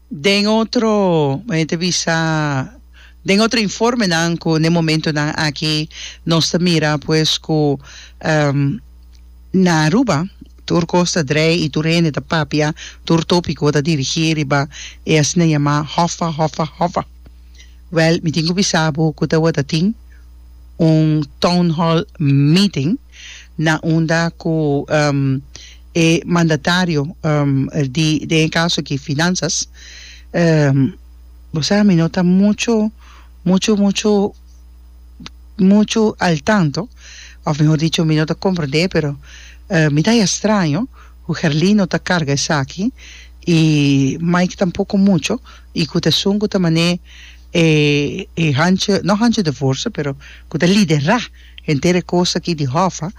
Den otro, mei ta bisa, den otro informenan cu n'e momentonan aki nos ta mira pues cu em, na Aruba tur cos ta drei y tur hende ta papia, tur topico ta dirigi riba e asina yama hoffa, hoffa, hoffa. Wel, mi tin cu bisa bo cu tawata tin un town hall meeting na unda cu em, E mandatario di den e kaso aki Finanzas, bo sa mi no ta mucho mucho mucho mucho al tanto, of mehor dicho mi no ta komprendé, pero mi ta haña straño ku Herlin no ta karga esaki i Mike tampoko mucho i ku ta esun ku ta manera e hancho, no hancho de forsa pero ku ta liderá. Henter e cos aki di Hoffa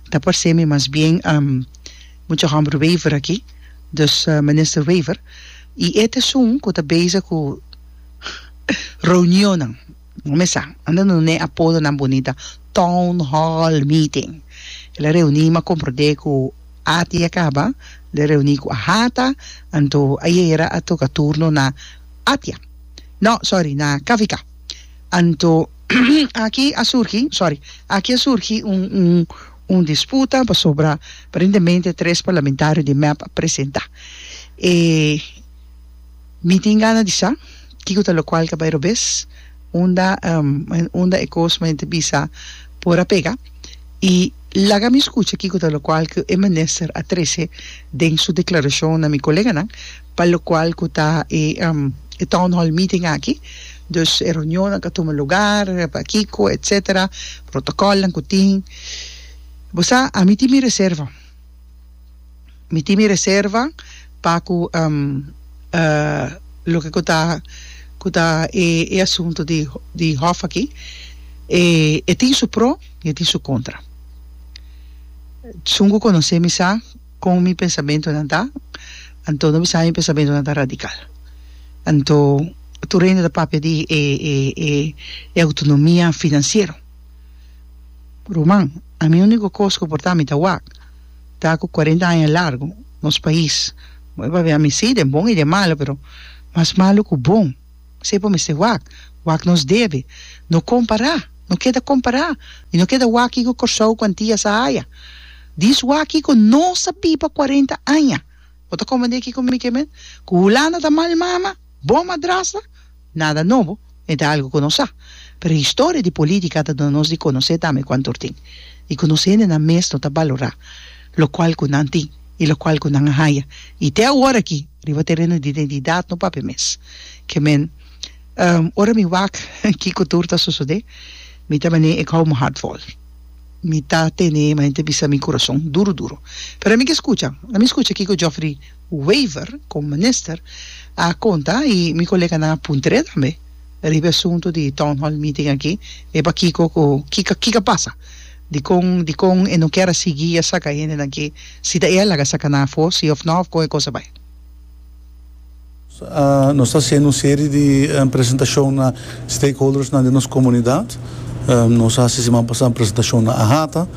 ta parcemi mas bien mucha homber Wever aki, dus Minister Wever, y e t'esun cu ta bezig cu reunionnan, no me sa, anda no n'e apodonan bunita, town hall meeting, el a reuni m'a comprende cu ati a caba de reuni cu a hata, anto ayera a toca turno na Atia, no sorry na KVK, anto. Aki a surgi, sorry, aki a surgi un un un disputa pasobra aparentemente tres parlamentario di mep a presenta. E mi tin gana di sa kico ta locual caba e robes unda unda e cos men ta bisa por a pega y laga mi scucha kico ta locual cu e minister a trece den su declaracion na mi coleganan Pa locual cu ta e e town hall meeting aki. Dus e reunionnan cu a tuma lugar, pa kico, etc. Protocolnan cu tin. Bo sa, ami tin mi reserva. Mi tin mi reserva pa cu loke cu ta cu ta e e asunto di di hof aki e e tin su pro y e tin su contra. Segun cu conoce mi sa. Kon mi pensamentunan ta, anto no bisa mi pensamentunan ta radikal. Anto tur hende ta papia di e e e autonomia finansiero. Ruman, ami uniko kos ku por ta mi ta wak ta ku kuarenta aña largu nos pais, bo papia ami si den bon i den malu pero mas malu ku bon. Esei bo mester wak, wak nos debe. No kompará, no keda kompará i no keda waki ku Kòrsou ku antia sa haya. Dis waki ku no sa biba kuarenta aña, bo ta komprendé kiko mi ke men? Ku Hulanda ta mal mama, bon madrasta? Nada nobo, e ta algu ku nos sa. Pero historia di polítika a duna nos di konosé tambe ku antur tin i ku nos hendenan mes no ta balorá lokual ku nan tin i lokual ku nan a haya. I te awor aki. Riba tereno di identidad no papia mes ke men ora mi wak kiko tur ta sosode mi ta mane e kou mi hart vol mi ta tene mi ta bisa mi kurason duru duru pero ami ke skucha la mi skucha kiko Geoffrey Wever komo minister a konta i mi koleganan a puntra e tambe riba e asunto di town hall meeting aki e pakiko ku kiko kiko a pasa. Dikon dikon e no kier a sigui a saka hendenan aki, si ta e a laga saka nan afó si òf nò òf kon e kos a bai. Nos ta hasiendo un serie di presentacion na stakeholdersnan den nos comunidad. Nos a hasi siman pasá un presentacion na Ahata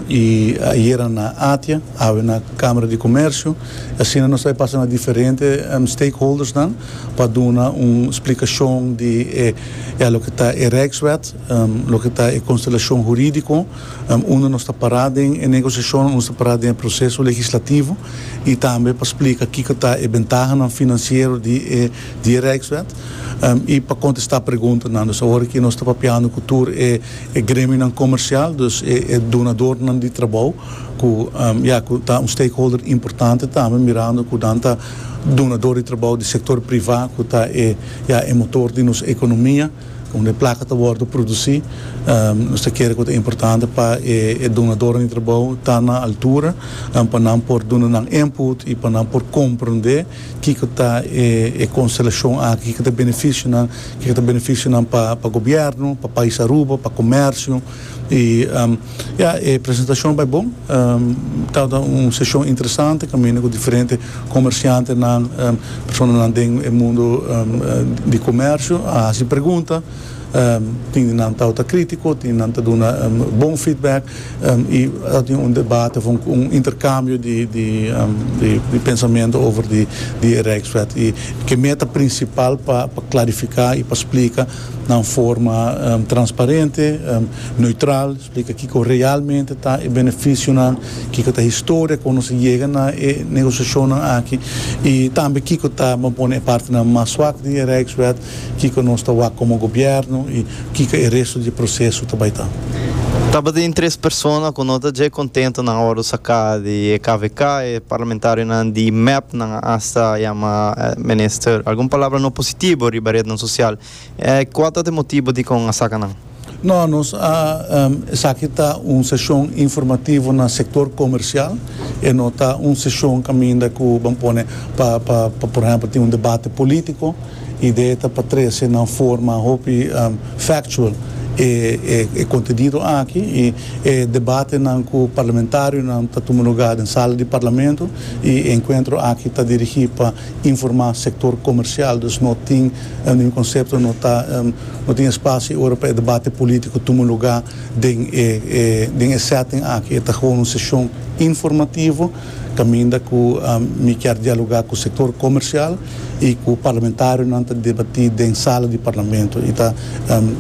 y ayera na Atia, awe na Camera di Comercio. Y asina nos ta e pasa na diferente stakeholdersnan pa duna un splicacion di e loke ta e Rijkswet. Loke ta e konstelashon hurídiko? Unda nos ta pará den e negosiashon, unda nos ta pará den e proseso legislativo i tambe pa splika kiko ta e bentahanan finansiero di e di e Rijkswet i pa kontestá preguntanan. Dus awor aki nos ta papiando ku tur e e gremionan komersial, dus e e donadornan di trabou ku ya ku ta un stakeholder importante tambe mirando ku nan ta donador di trabou di sektor privá ku ta e ya e motor di nos ekonomia. Unda e plaka ta wòrdu produsí, nos ta kere ku ta importante pa e dunadornan di trabou ta na altura pa nan por duna nan input i pa nan por komprondé kiko ta e konstelashon aki, kiko ta e benefisio nan, kiko ta benefisio nan pa gobièrnu, pa pais Aruba, pa komèrsio. Y ya, e presentacion bay bon. Tabata un sesion interesante caminda cu diferente comerciantenan, personanan den e mundo di comercio a haci pregunta. Tin di nan tabata critico, tin di nan ta duna bon feedback y a tin un debate of un intercambio di pensamento over di e Rijkswet. Y ke meta principal pa clarifica y pa splica. na un forma transparente, neutral, splika kiko realmente ta e benefisionan, kiko ta e historia kon nos a yega na e negosiashonnan aki i tambe kiko ta, bo a pone e partenan mas swak di e Rijkswet, kiko nos ta wak komo gobièrnu i kiko e resto di e proseso ta bai ta. Tabatin tres persona ku no ta dje kontento nan ora bo saka di e kvk, e parlamentarionan di mep nan. Asta yama minister algun palabra no positibo riba retnan sosial. E kua ta ta e motibo dikon a saka nan? No, nos a esaki ta un seshon informativo na sektor komersial, e no ta un seshon kaminda ku ban pone pa pa pa por ehèmpel tin un debate polítiko. Idea esta pa trese na un forma hopi factual e e kontenido aki i e debatenan ku parlamentarionan ta tuma lugá den sala di parlamento E encuentro aki ta dirigi pa informa sector comercial, dus no tin ningún concepto, no ta no tin espacio y ora pa e debate politico tuma lugar den e den e setting aki. E ta gewoon un sesion informativo caminda cu mi kier dialoga cu sector comercial y cu parlamentarionan ta debati den sala di Parlamento y ta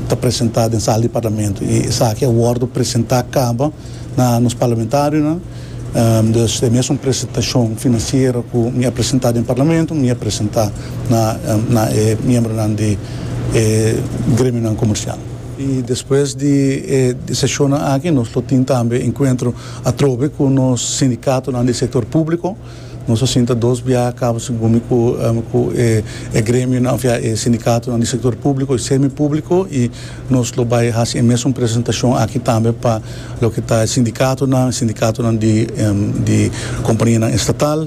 ta presenta den sala di Parlamento y esaki a wordo presenta caba na nos parlamentarionan. Desde mesun presentacion financiero cu mi a presenta den Parlamento mi a presenta na e miembronan di e gremionan comercial. Y despues di e sesionnan aki nos lo tin tambe encuentro atrobe cu nos sindicatonan di e sector publico. Nos a sinta dos biaha cabo segun mi cu cu e e gremionan of ya e sindicatonan di sector publico y semipublico y nos lo bay haci e mesun presentacion aki tambe pa loke ta e sindicatonan, sindicatonan di di companianan estatal,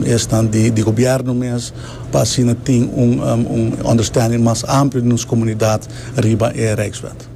esnan di di gobierno mes pa asina tin un un understanding mas amplio di nos comunidad riba e Rijkswet.